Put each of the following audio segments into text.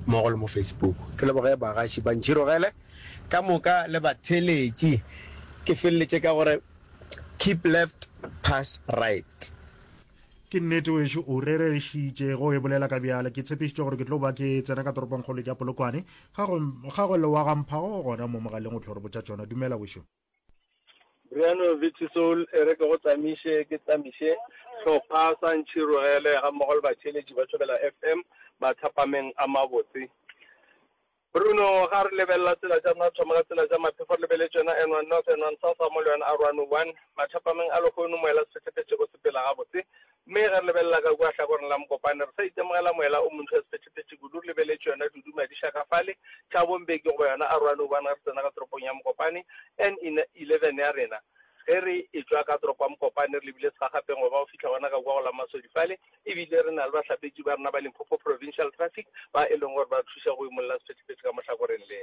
mmogo le mo Facebook. Ke leboge bagaši ba ntšhirogele ka moka le batheeletši. Ke feleletše ka go re, Keep left, pass right. Ke nnete wešu, o rerešitše ge o e bolela ka bjale. Ke tshepišitše gore ke tlo ba ke tsena ka toropongkgolo ke ya Polokwane. Ga go, ga go lewa ga mphago gona mo mogaleng o tlo re botša tšona. Dumela wešu. Briano Vici Soul e re ke go tsamiše ke tsamiše hlopha sa Ntšhirogele ga mmogo le batšheletši ba Thobela FM mathapameng a mabotse. Bruno ga re lebelela tsela tša rena thoma ka tsela tša maphefo re lebele tšona N1 North N1 South ga mo le yona R101 mathapameng a lehono moela sefetlefetšego sepela gabotse Mme ge re lebelela ka kua hlakoreng la mokopane, re sa itemogela moela o montshwa sephethephethe kudu, re lebeletše yona Dudu Madiša ka fale, Thabo Mbeki goba yona Aroane Ubane ge re tsena ka toropong ya Mokopane, NN 11 ya rena. Ge re etšwa ka toropo ya Mokopane re lebile segagapeng go ba go fihla gona ka kua go la Masodi fale, e bile re na le bahlapetši ba rena ba Limpopo Provincial Traffic ba e leng gore ba re thuša go imolla sephethephethe ka mo hlakoreng le.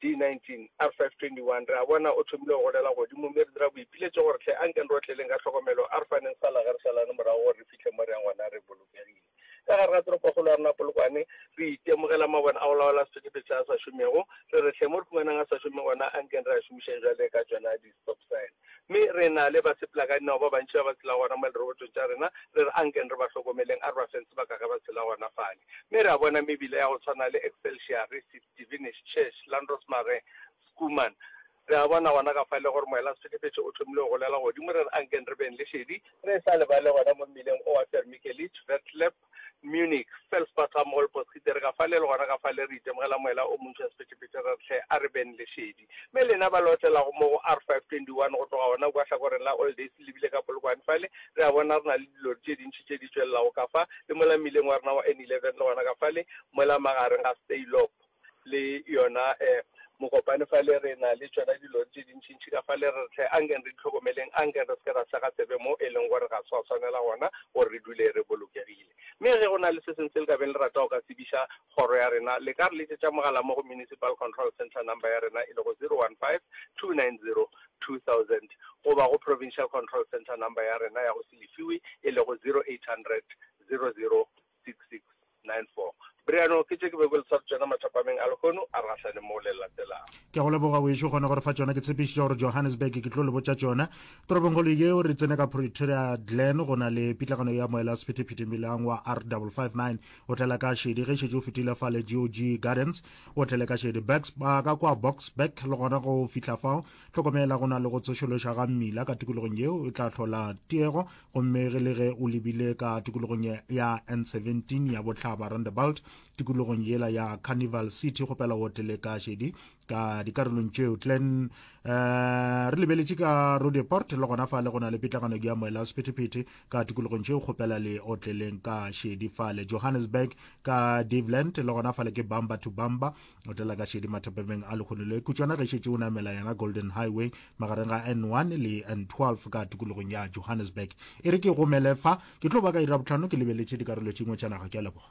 D19, R521, Re a bona o thomile go golela godimo, mme re dira boipiletšo gore hle a nke re otleleng ka tlhokomelo, a re faneng sala ge re šalane morago gore re fihle mo re yang gona re bolokegile. Ka gare ga toropokgolo ya rena Polokwane, re itemogela mabone a go laola sephethephethe se a sa šomego, re re hle mo re humanang a sa šome gona a nkeng re a šomišeng bjale ka tšona di-stop sign. Mme re na le basepela ka dinao ba bantši ba ba tshelago gona mo lerobotong tša rena, re re a nkeng re ba hlokomeleng, a re ba feng sebaka ge ba tshela gona fale. Mme re a bona mebila ya go tshwana le Excelsior, re se. Divinish, Church, Landros Marais, Schoeman. Re a bona gona ka fa e le gore moelasehlekefetšo o thomile go golela godimo, re re a nkeng re beng le šedi, re sa lebale gona mo mmileng owa Vermikelitsch, Vertlep, Munich, Felsbach-Amholtbos, re itše re ka fa le, le gona ka fa le re itemogela moela o montšhwa sephethephethe, re re hle a re beng le šedi. Polokwane, mme lena ba le otelago mo go R521 go tloga gona kua hlakoreng la All Days le bile ka Polokwane fale, re a bona re na le dilori tše dintši tše di tšwelelago ka fa le mola mmileng wa rena wa N11 le gona ka fale mola magareng ga Steyloop le yona Mokopane fale, re na le tšona dilori tše dintšintši ka fale. Re re hle ankeng re di hlokomeleng, ankeng re se ke ra sega tsebe mo e leng gore ga se gwa swanela gona gore re dule re bolokegile. Mme ge go na le se sengwe se le ka beng le rata go ka tsebiša Kgoro ya rena, le ka re letšetša mogala mo go Municipal Control Centre number ya rena e lego 015-290-2000 goba go Provincial Control Centre number ya rena ya go se lefiwe e lego 0800-006694. Briano ke tše ke bego le sware tšona mathapameng a lehono a re gahlane mo le latelago. Ke a go leboga wešu kgone gore fa tšona ke tshepišitša gore Johannesburg ke tlo le botša tšona toropongkgolo yeo re tsene ka Pretoria Glen go na le pitlagano ya moela sephethephethe melang wa R559 o tlela ka šedi ge šetše o fetile fa le gog gardens o tlele ka šedi backs ba ka kwa box back le gona go fihla fao tlhokomela go na le go tsošološa ga mmila ka tikologong yeo e tla hlola tiego gomme ge le ge o lebile ka tikologong ya n17 ya botlhaba randebalt tikologong yela ya carnival city kgopela o tlele ka šedi ka dikarolong tšeo tlen um eh, re lebeletše ka rodeport le gona fa le gona le pitlagano di amoela sephetephete ka tikologong tšeo kgopela le otleleng ka šedi fale johannesburg ka daveland le gona fale ke bamba to bamba otlela ka šedi mathapemeng a lekgono le kutswana ge šetse o namela yena golden highway magareng ga n1 le n12 ka tikologong ya johannesburg e re ke gomele fa ke tlo ba ka ira botlhano ke lebeletše dikarolo tšengwe tša naga ke a leboga